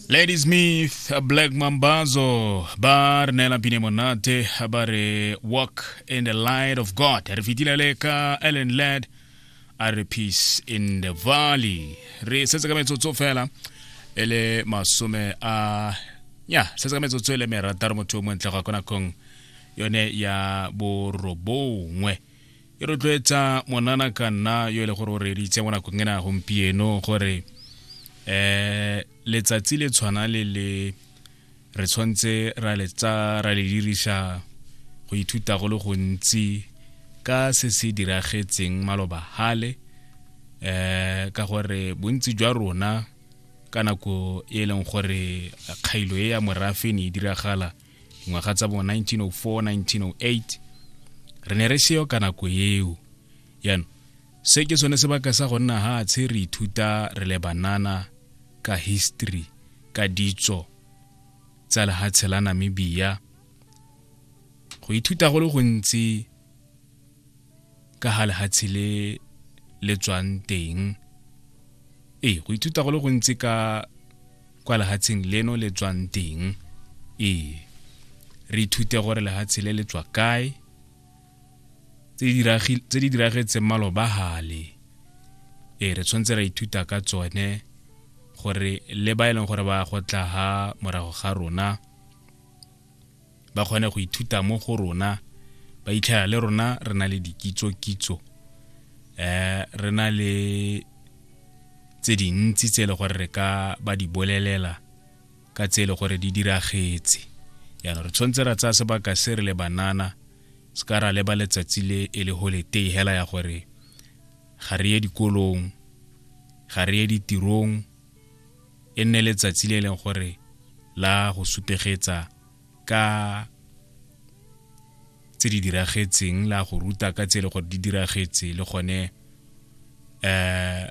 ladysmith black mambazo ba re neela pine monate ba re walk in the light of god re fetile le ka ellen lad a re peace in the valley re setse ka metsotso fela e le masome a ya setse ka metsotso e le merataro motho o montle ga kona kong yone ya borobongwe e rotloetsa monana ka nna yo e le gore o reditse mo nakong e na gompieno gore um letsatsi le tshwana le le re tshwanetse ra letsa ra le dirisa go ithuta go le gontsi ka se se diragetseng maloba hale um ka gore bontsi jwa rona ka nako e leng gore kgailo e ya morafe ne e diragala ngwaga tsa bo 1904 1908 re ne re seyo ka nako eo yaanong se ke sone sebaka sa go nna ga tshe re ithuta re le banana ka history ka ditso tsa lehatshe la namibia go ithuta go le gontsi ka ga lehatshe le le tswang teng ee go ithuta go le gontsi ka kwa lehatsheng leno le tswang teng ee re ithute gore lehatshe le le tswa kae tse di diragi- tse di diragetseng maloba gale ee re tshwanetse ra ithuta ka tsone gore le ba e leng gore ba go tla ha morago ga rona ba kgone go ithuta mo go rona ba itlhela le rona re na le dikitso-kitso um re na le tse dintsi tse e le gore re ka ba di bolelela ka tse e le gore di diragetse jaanong re tshwanetse ra tsaya sebaka se re le banana se ka ra leba letsatsi le e le holiday hela ya gore ga re ye dikolong ga re ye ditirong e nne letsatsi le e leng gore la go sutegetsa ka tse di diragetseng la go ruta ka tse e le gore di diragetse le gone um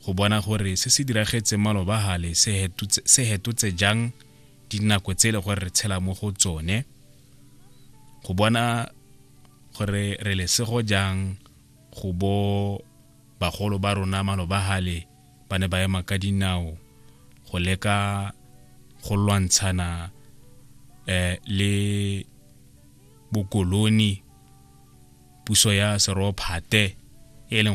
go bona gore se se diragetseng malobagale se hetotse jang dinako tse e le gore re tshela mo go tsone go bona gore re lesego jang go bo Bagolo ba rona malobagale ba ne ba ema ka dinao go leka go lwantshana eh, le bokoloni puso ya serophate e leng